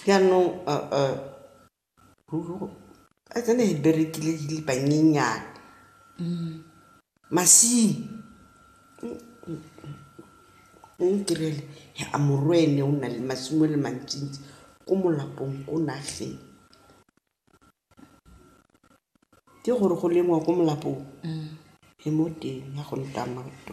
Jaanong ruri a tsena e berekile di le banyenyane masimo o ntirele a morwene o na le masimo a le mantsintsi ko molapong ko nageng ke gore go lengwa ko molapong le mo teng ya go nta madi .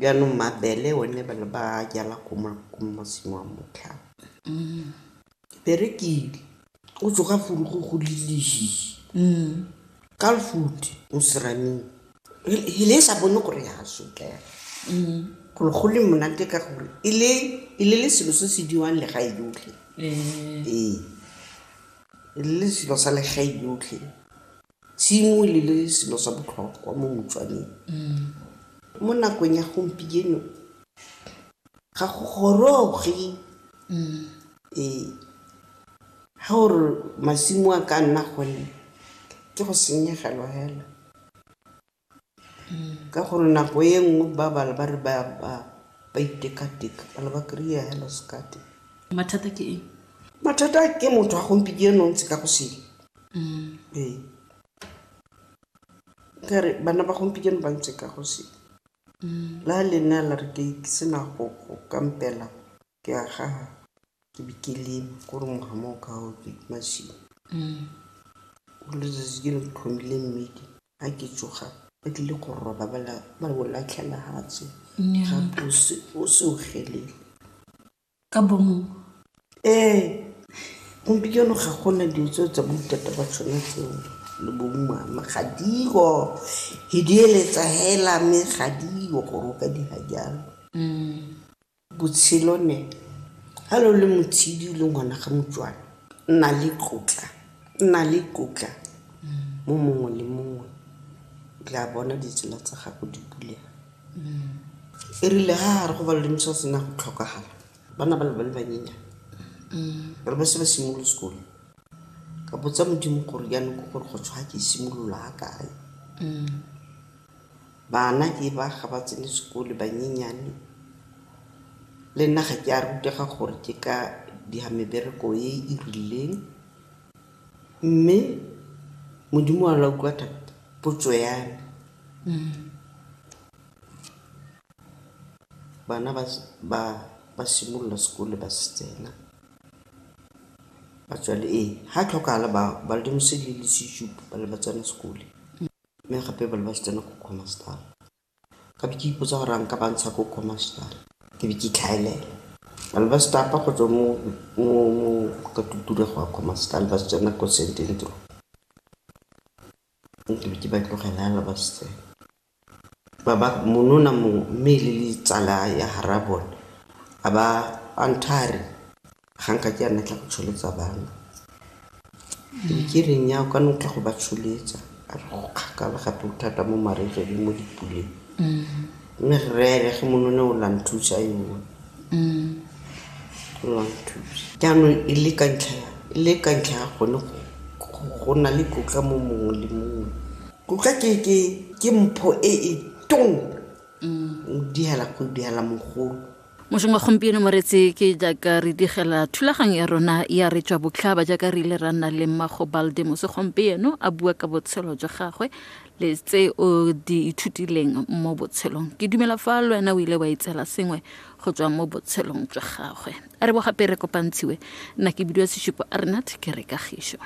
Jaanong mabele one ba ne ba jala ko masimo a motlhaba. Perekile o tsoga furu go go lelehi ka lefuti mo seraming he le sa bone gore ya sotlega gore go le monate ka gore e le e le le selo se se diwang legae yotlhe ee e le le selo sa legae yotlhe. Tshimo le le selo sa botlhokwa mo Motswaneng. Mo nakong ya gompieno ga go goroge ee, ga o re masimo a ka nna gone ke go senyegelwa fela. Ka gore nako e nngwe ba bala ba re ba ba ba itekateka ba le ba kry-a hello sekate mathata ke eng mathata ke motho a gompieno ntse ka go sele ee kare bana ba gompieno ba ntse ka go sele la lena la re ke ke sena go go kampela Ke a ga ke be ke leme ko re ngwaga mo o ka o ke masimo. O letsatsi ke le ke tlhomile mmidi ga ke tsoga ba tlile go roba ba la- ba o latlhela hatse Nnyaa. ga twe o se- o se o gelele Ka bomo. ee gompieno ga gona dilo tseo tsa boitata ba tshwana tseo le bo mmama ga dio he di eletsa hela mme ga dio gore o ka dira jalo Botshelo ne, ha lo le motshidi le ngwana ga motswana, nna le tlotla, nna le tlotla mo mongwe le mongwe. Tla bona ditsela tsa gago di bulega. E rile ha re go balole moswa sena go tlhokagala, bana ba le ba le banyenyana re ba se ba simolole sekolo. Ka botsa Modimo gore jaanong ke gore go tshwa ke simolola ha kae. Bana ke ba ga ba tsene sekole banyenyane, le nna ga ke a rutega gore ke ka dira mebereko e e rileng. Mme Modimo wa la utlwa thata potso ya me. Bana ba simolola sekole ba se tsena, ga tlhokagala ba le tsena sekole. Mme gape ba ne ba tsena ko Khomastar. Ka be ke ipotsa gore a nka ba ntsha ko Khomastar. Ke be ke itlhaelela. Ba ne ba stapa go tswa mo ka tutura go ya Khomastar ba tsena ko St Andrew. Ke be ke ba tlogela yana ba se tsena. Ba ba monona mongwe mme e le le tsala ya ga rraabone a ba a nthare Ga nka ke a nna tla go tsholetsa bana. Ke reng ya o ka nna tla go ba tsholetsa a re go kgakala gape o thata mo marriage le mo dipuleng. Mme rre ene ge monone o la nthusa yo o la nthusa. Jaanong e le ka ntlha ya e le ka ntlha ya gone go go na le tlotla mo mongwe le mongwe. Tlotla ke ke ke mpho e e tona o diela go diela mogolo. mošong wa gompieno moretse ke jaaka re digela thulaganyo ya rona ya re tswa botlhaba jaaka re ile ra nna le mmago baldemose gompieno a bua ka botshelo jwa gagwe le tse o di ithutileng mo botshelong ke dumela fa le wena o ile wa itsela sengwe go tswa mo botshelong jwa gagwe a re bo gape re kopantshiwe nna ke bidiwa sesupo a rena thekere kagišo